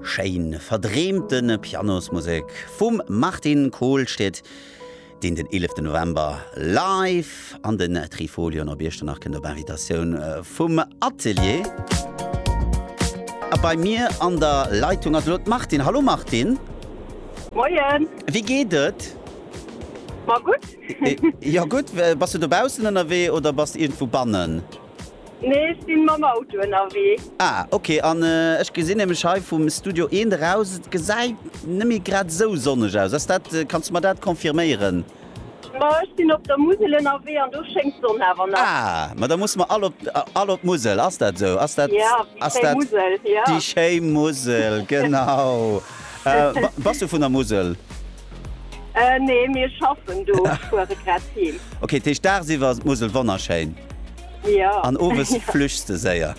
Schéin verdreemte Pianosmusek vum Martin Kohlstedt, deen den 11 November live an den Trifolion op Iechternach kënnt op Invitatioun vum Atelier. A bei mir an der Leitung ass elo d'Martine. Hallo Martine. Moien. Wéi geet et? Ma gutt. Jo gutt. Bass du dobaussen ënnerwee oder bass iergendwou bannen? Nee ech sin mam Auto ënnerwee. Ah ok, an ech gesin nämlech hei vum Studio eent eraus et gesait nemmi grad esou sonneg aus, ass dat, kanns de mer dat confirméieren? Ma ech sin op der Musel ënnerwee an do schéngt d'Sonn awer nach. Ah ma da musse mer all op d'Musel, ass dat esou? Ass dat déi schéi Musel, genau. Bass du vun der Musel? Äh, nee, mir schaffen do, fuere grad heem. Okay, dat heescht dagsiwwer ass d'Musel wonnerschéin. Ja. An owes flüchts de séier.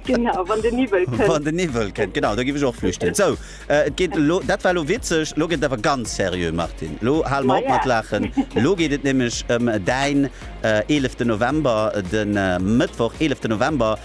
Genau, wann de Niwwel kënnt. Wann de Niwwel kënnt, genau, da giff ech och flüchten. Sou, äh, et geet elo, dat war lo witzeg, lo gëtt et awer ganz seriö, Martine. Lo hale mer op mat laachen. Lo geet et nämlech ëm däin, äh, eeleften November, den, äh, Mëttwoch, eeleften November.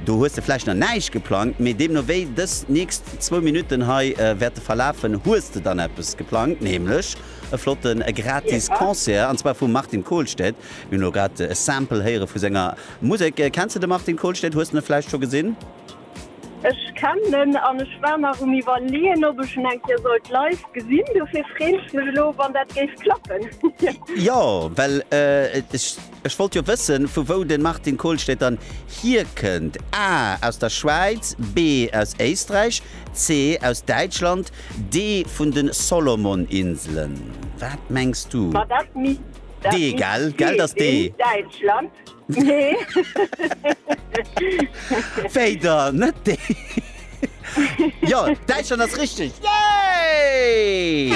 Do hues de vläicht nach näischt geplangt, mee deemno wéi dës nächst zwou Minutten hei wäerte verlafen, hues de dann eppes geplangt, nämlech e flotte gratis Concert an zwar vum Martin Kohlstedt. Mir hunn elo grad e Sample héiere vu senger Musek. Kenns de de Martin Kohlstedt? Hues de e vläicht scho gesinn? Ech kennen en an ech war nach um iwwerleeën, ob ech en eng Kéier sollt live gesinn. Dofir freeën ech mech elo, wann dat géif klappen. Jo, well ech. Ech wollt jo wëssen, vu wou de Martin Kohlstedt dann hierkënnt, A, Aus der Schwäiz, B, Aus Éisträich, C, Aus Däitschland, D, Vun de Solomoninselen. Wat mengs du? Ma dat misst D, gell? Gell, dass D. Däitschland. Wéi dann? Net D? Jo, Däitschland ass richteg! Yay!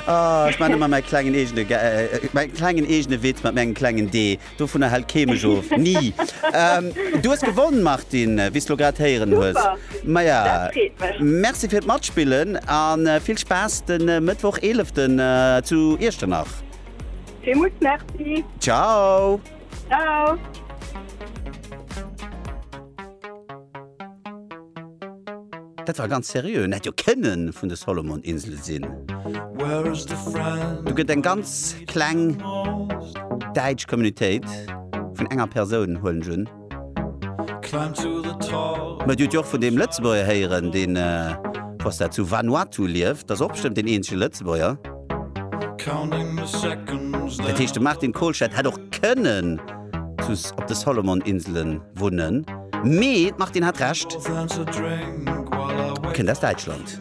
Ah, ech man ëmmer mäi klengen eegene Ga äh, mäi klengen eegene Witz mat mengem klengen Dee. Dovunner hält kee mech of. Ni! Ähm, du hues gewonnen, Martine, wéi s du lo grad héieren hues. Super! Ma ja, Dat freet mech. merci fir d'Matspillen an äh, vill Spaass de Mëttwoch 11. äh, zu Iechternach. Villmools Merci! Ciao! Dat war ganz seriö, en hätt jo kënnen vun de Solomoninsele sinn. Do gëtt eng ganz kleng däitsch Communitéit vun enger Persoun, huelen ech un. Mä Dir hutt jo och vun deem Lëtzebuerger héieren, dee, wou ass dat, zu Vanuatu lieft, dat ass och bestëmmt deen eenzege Lëtzebuerger. Dat heescht de Martin Kohlscheit hätt och kënnen zu op de Solomon Inselen wunnen, mee d'Martine hat Recht, e kënnt aus Däitschland.